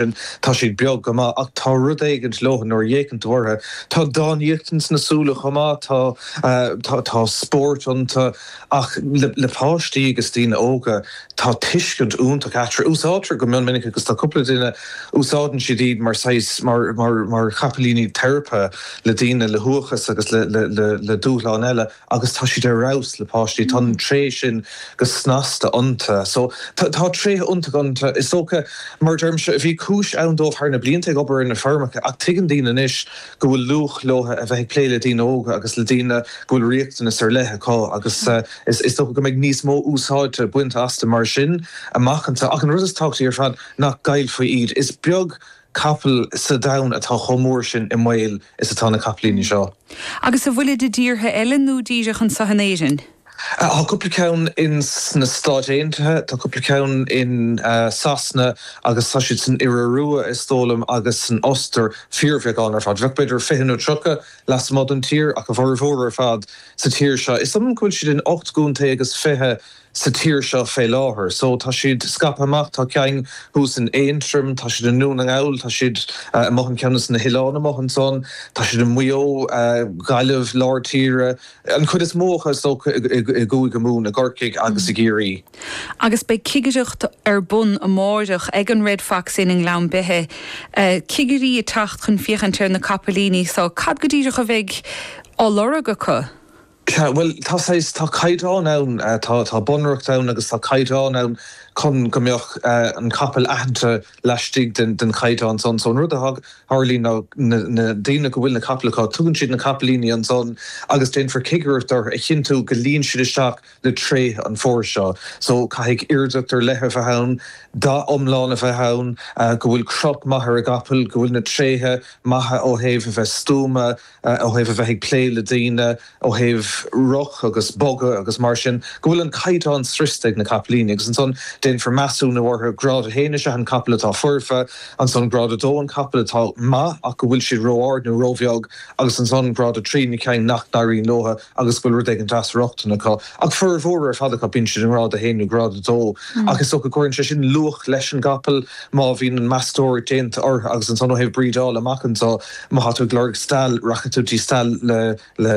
sin, tá siad beag go maith ach tá rud éigint leo nuair a fhéachann tú orthu, tá dánaíocht ins na súile chomh maith, tá, tá, tá spóirt iontu ach le páistí agus daoine óga tá tuiscint iontach eatarthu. Úsáidtear go mion minic agus tá cúpla duine, úsáideann siad iad mar saghas, mar, mar, mar chapaillíní teiripe le daoine le huathachas agus le, le, le, le dúshláin eile. agus tá siad ar fheabhas le páistí, tá an tréith sin go snasta iontu. So tá tréithe iontacha iontu. Is dócha, mar a deirimse, bhí cúis ann dóibh thar na blianta ag obair ar na feirmeacha ach tuigeann daoine anois go bhfuil luach leo a bheith ag plé le daoine óga agus le daoine go bhfuil riachtanas ar leith acu agus is dócha go mbeidh níos mó úsáide bainte astu mar sin amach anseo. Ach an rud is tábhachtaí ar fad nach gcaillfí iad. Is beag. capall sa domhan atá chomh mór sin i mbaol is atá na capaillíní seo. Agus a bhfuilid i dtíortha eile nó díreach anseo in Éirinn? Tá cúpla ceann in sna Stáit Aontaithe, tá cúpla ceann in Sasana agus tá siad san Iorua, is dóigh liom, agus san Ostair, fíorbheagán ar fad. Bheadh b'fhéidir fiche nó tríocha lasmuigh den tír ach a bhformhór ar fad sa tír seo. Is dóigh liom go bhfuil siad in ocht gcontae agus fiche. sa tír seo fé láthair. So tá siad scaipthe amach, tá ceann thuas in Aontroim, tá siad i nDún na nGall, tá siad amuigh ar cheann de sna hoileáin amuigh ansan, tá siad i Maigh Eo, Gaillimh, Lár Tíre, an chuid is mó acu is dócha i gCúige Mumhan, i gCorcaigh agus i gCiarraí. Agus beidh cigireacht ar bun amáireach ag an Red Fox Inn i nGleann Beithe, cigirí ag teacht chun féachaint ar na capaillíní so cad go díreach a bheidh á lorg acu? Bhuel, tá saghas, tá caighdeán ann, tá bunreacht ann agus tá caighdeán ann chun go mbeadh an capall aitheanta laistigh den chaighdeán san. So an rud a tharlaíonn ná na daoine go bhfuil na capaill acu, tugann siad na capaillíní ansan agus déanfar cigireacht orthu a chinntiú go luíonn siad isteach le tréithe an phóir seo. So caithfidh aoirdeacht ar leith a bheith ann, dath iomlán a bheith ann, go bhfuil crot maith ar an gcapall, go bhfuil na tréithe maithe ó thaobh a bheith stuama, ó thaobh a bheith ag plé le daoine, ó thaobh rith agus bogadh agus mar sin, go bhfuil an caighdeán sroichte ag na capaillíní agus ansan déanfar measúnú orthu. Grád 1 is ea an capall atá foirfe, ansan grád 2 an capall atá maith ach go bhfuil siad ró-ard nó ró-bheag agus ansan grád 3 na cinn nach n-éiríonn leotha. agus go bhfuil rud éigin de dheacracht acu, ach formhór ar fad acu bíonn siad i ngrád a haon nó grád a dó, ach is dócha go gcuireann sé sin luach leis an gcapall má bhíonn an meastóireacht déanta orthu agus ansan ó thaobh brídeála amach anseo má tá tú ag lorg stail rachaidh tú dtí stail le, le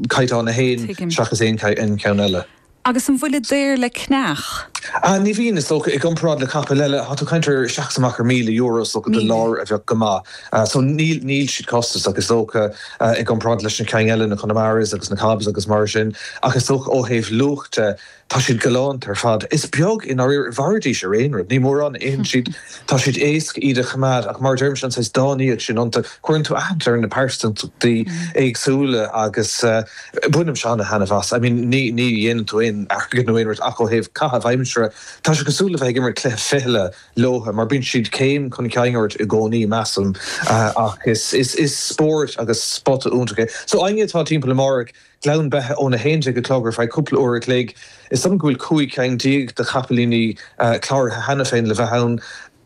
caighdeán a haon seachas aon cheann eile. Agus an bhfuilid daor le ceannach? Ah, ní bhíonn, is dócha, i gcomparáid le capaill eile. Tá tú ag caint ar isteach is amach ar míle euro, is dócha, do láir a bheadh go maith. So, níl, níl siad costasach, is dócha, i gcomparáid leis na cinn eile, na Connemaras agus na Cobs agus mar sin. Ach is dócha ó thaobh luach de, tá siad galánta ar fad. Is beag, i ndáiríre, mhairfidís ar aon rud, ní mórán a itheann siad. Tá siad éasca iad a choimeád ach, mar a deirimse, an saghas dánaíocht sin iontu, cuireann tú aithne ar na pearsantachtaí éagsúla agus eh, Bainimse ana-thaitneamh as. I mean ní ní dhéanann tú aon airgead nó aon rud ach ó thaobh caitheamh aimsire tá sé cosúil le bheith ag imirt cluiche fichille leotha mar bíonn siad céim chun cinn ort i gcónaí measaim ach is is is spóirt agus spota iontach é. So éinne atá timpeall amárach Gleann Beithe ón 11 a chlog ar feadh cúpla uair a chloig is dóigh liom go bhfuil 15 cheann de chapaillíní cláraithe cheana féin le bheith ann.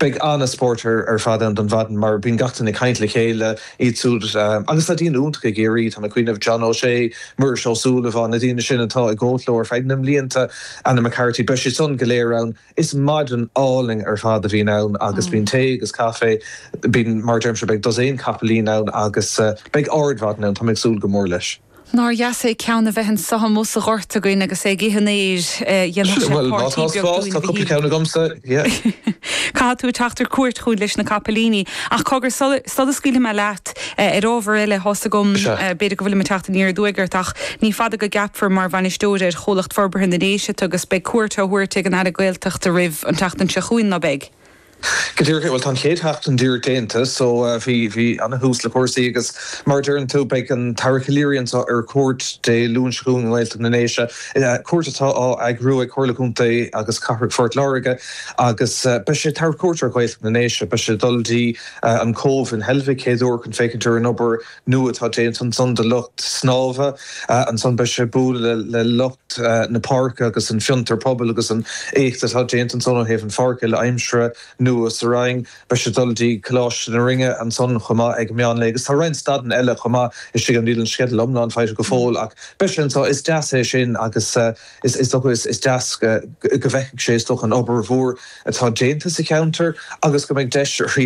Beidh an-spórt ar fad ann don mhaidin mar bíonn gach duine ag caint le chéile, iad siúd agus tá daoine iontacha i gCiarraí, tá mé ag cuimhneamh, John O'Shea, Muiris Ó Súilleabháin, na daoine sin atá ag gabháilt leo ar feadh na mblianta, Anna McCarthy, beidh siad san go léir ann. Is maidin álainn ar fad a bhíonn ann agus bíonn tae agus caife, bíonn, mar a deirimse, beidh dosaen capaillín ann agus beidh ardmhaidin ann, tá mé ag súil go mór leis. Nár dheas é ceann a bheith anso amuigh sa ghort againn agus é ag ithe an fhéir. Dhéanfadh sé páirtí beag dúinn go hiontach. Caithfidh tú teacht ar cuairt chugainn leis na capaillíní. Ach cogar, sula scaoilfidh mé leat ar ábhar eile, thá's agam, b'fhéidir go bhfuilim ag teacht aniar aduaidh ort, ach ní fada go gceapfar mar bhainisteoir ar Chomhlucht Forbartha na nDéise tú agus beidh cuairt á thabhairt ag an Aire Gaeltachta oraibh an tseachtain seo chugainn, ná beidh? Go díreach, bhuel, tá an chéad sheachtain díreach déanta so bhí, bhí ana-thús le cúrsaí agus mar a deireann tú, beidh an tAire Calleary anseo ar cuairt Dé Luain seo chugainn i nGaeltacht na nDéise, cuairt atá á eagrú ag Comhairle Contae agus Cathrach Phort Láirge agus beidh sé ag tabhairt cuairt ar Ghaeltacht na nDéise, beidh sé ag dul dtí an Cóbh in Heilbhic chéad uair chun féachaint ar an obair nua atá déanta ansan do lucht snámha ansan. Beidh sé ag bualadh le lucht na páirce agus an fiontar pobail agus an éacht atá déanta ansan ó thaobh an pháirc uile-aimsire nua sa Rinn. Beidh sé ag dul dtí Coláiste na Rinne ansan chomh maith ag meán lae agus tá roinnt stadanna eile chomh maith istigh ann. Níl an sceideal iomlán faighte go fóill ach beidh sé anso. Is deas é sin agus is dócha is deas go bhfeicfidh sé, is dócha, an obair mhór atá déanta sa cheantar agus go mbeidh deis arís,